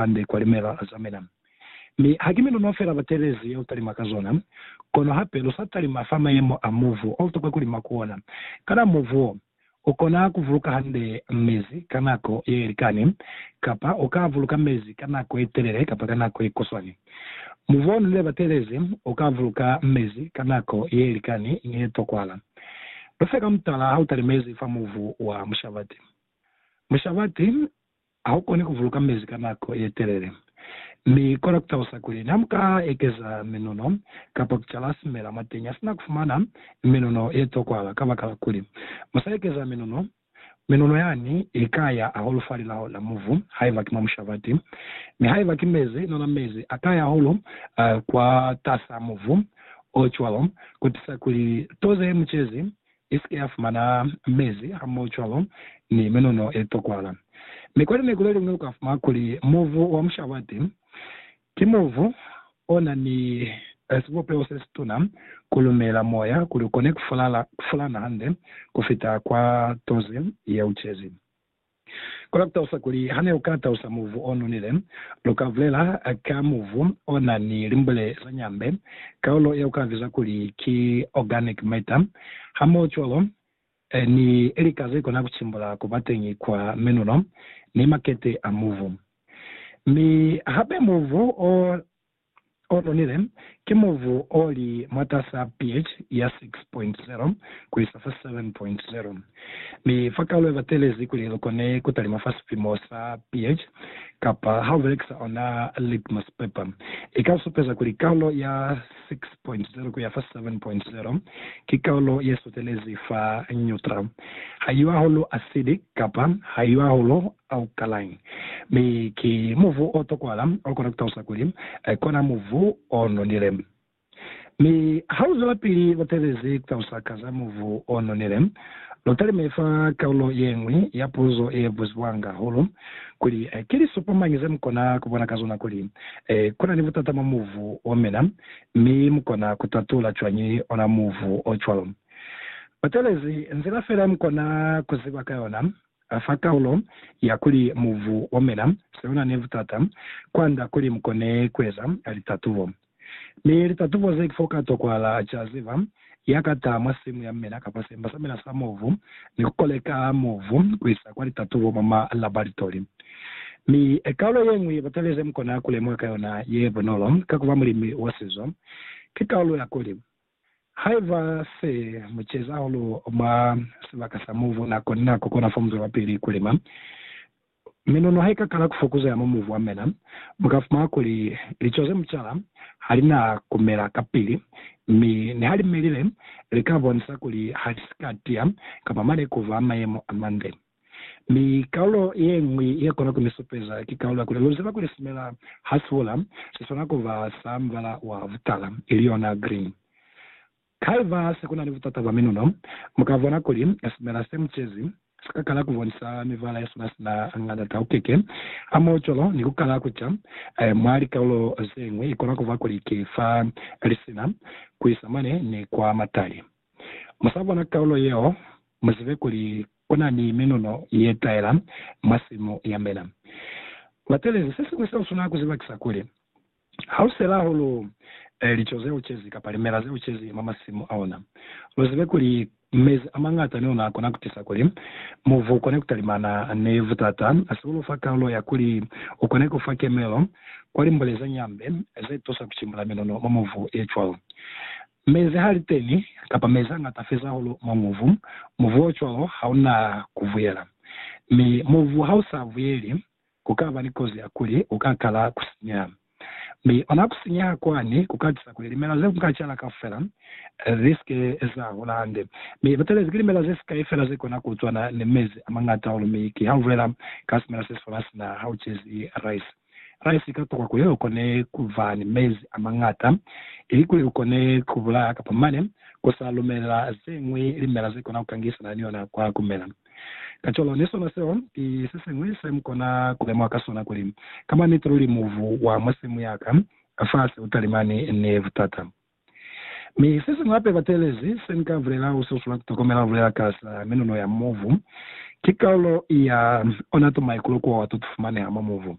hande kwa limela za mina. Mi haki miluno fela batelezi yeo talima ka zona, kono hape lu sa talima fa mayemo a muvu o tokwa kulima ku ona. Kana muvu wo u kona ku vuluka hande mezi ka nako ye likani, kapa u ka vuluka mezi ka nako ye telele kapa ka nako ye kuswani? Muvu o nonile batelezi u ka vuluka mezi ka nako ye likani ni ye tokwala. Lu fe ka mutala ha u talimezi fa muvu wa mushabati. Mushabati. Haukoni kuvuluka mezi ka nako yetelele, mi kona kutalusa kuli namuka ekeza minuno kapa kucala simela mwateñi hasina kufumana minuno yetokwala kabakala kuli musa ekeza minuno. Minuno yani ikaya hahulu falilaho la muvu haiba ki mwa mushabati, mi haiba ki mezi nona mezi akaya hahulu kwatas'a muvu ocwalo kutisa kuli to zeemucezi i si ke ya fumana mezi hamoho cwalo ni menono ye tokwala. Mi kwa lineku le liñwi lu ka fumana kuli mubu wa mushabati ki mubu o na ni sibupeho se situna ku lumela moya kuli u kone ku fulana hande ku fita kwa tozi ye ucezi. Ku la ku talusa kuli, ha ne u ka talusa mubu o nonile, lu ka bulela ka mubu o na ni limbule za nyambe, kaulo ye u ka biza kuli ki organic matter, hamohocwalo ni lika ze kona ku cimbula ku ba teñi kwa menulo ni makete a mubu. Mi hape mubu o o nonile, ki mubu o li mwatas'a pH ya 6.0 ku isa fa 7.0, mi fa kalo ba telezi kuli lu kone ku talima fa sipimo sa pH, kapa ha u belekisa ona litmus paper, i ka supeza kuli kalo ya 6.0 ku ya fa 7.0 ki kalo ye sutelezi fa neutral, ha i yo hahulu acidic kapa ha i yo hahulu A u kalañi? Mi ki muvu o tokwala, o kona ku talusa kuli, Kona muvu o nonile. Mi ha lu zwelapili lu teelezi ku talusa ka za muvu o nonile, lu talime fa kalulo ye ñwi ya puzo ye buzibwanga hahulu, kuli, Ki lisupo mañi ze mu kona ku bona ka zona kuli ku na ni butata mwa muvu o mina, mi mu kona ku tatula cwañi ona muvu o cwalo? Lu teelezi nzila fela ye mu kona ku ziba ka yona. A fa kaulo ya kuli mu vu omela, siona ne butata, kwanda kuli mu kone kueza litatubo. Mi litatubo ze fo ka tokwahala ca ziba, ya ka taha mwa simu ya mela kapa semba sa mela sa mubu, ni ku koleka mubu ku isa kwa litatubo mwa ma laboratori. Mi kaulo ye ñwi batali ze mu kona ku lemuha ka yona ye bunolo ka ku ba mulimi wa sizo, ki kaulo ya kuli, Haiba se mu ceza hahulu mwa sibaka sa mubu nako ni nako, kona fa mu zwela pili ku lima. Minono ha i ka kala ku fokuzeha mwa mubu wa mina, mu ka fumana kuli lico ze mu cala ha li na ku mela kapili, mi ni ha li melile, li ka bonisa kuli ha li si ka tiya kamba mane ku ba mayemo a mande. Mi kaulo yeñwi yekona kumisupeza ki kaulo ya kuli luziba kuli simela hasihula siswana kuba sa mubala wa butala, ili yona green. Haiba sekunani butata bwa minuno, mukabona kuli simela semucezi sikakala kubonisa mibala yesona sina ng'anda taukeke hamoho cwalo ni kukala kuca mwa likaulo zeñwi. Ikona kuba kuli ki fa lisina kuisa mane ni kwa matali. Musabona kaulo yeo, muzibe kuli Kuna ni miluno ye taela mwa simu ya mina. Batelezi, sesiñwi seo suna ku ziba kisa kuli, ha u sela hahulu lico ze u cezi kapa limela ze u cezi mwa masimu aona, lu zibe kuli mezi a mañata neona a kona ku tisa kuli muvu u kone ku talimana ni butata. Se u lu fa kalulo ya kuli u kone ku fa kemelo kwa limbule ze ñambe ze tusa ku cimbula miluno mwa muvu ye cwalo. Mezi ha li teni, kapa mezi a ñata feza hahulu mwa muvu, muvu o cwalo ha u na ku vuyela. Mi muvu ha u sa vuyeli, ku ka ba ni kozi ya kuli u ka kala ku sinyeha. Mi ona ku sinyeha kwani ku ka tisa kuli limela ze ku nga cala kaufela li si ke za hola hande. Mi lutelezi ki limela ze sikai fela ze kona ku cwana ni mezi a mañata hahulu, mi ki ha u bulela ka simela se si hola sina ha u cezi rice. Fani si ka tokwa kuli lu kone ku ba ni mezi a mañata, ili kuli lu kone ku bulaya kapa mane ku sa lumelela ze ñwi limela ze kona ku kangisana ni ona kwa ku mela. Kacwalo, ni sona seo ki se siñwi se mu kona ku lemuha ka sona kuli, ka maniti luli mubu wa mwa simu ya ka, fafasi u talimani ni butata. Mi sesiñwi hape batelezi senika bulela u sasula kutokomela bulela kasa minuno ya mubu, ki kalulo ya ona tuma ikulu kuowa to tufumaneha mwa mubu.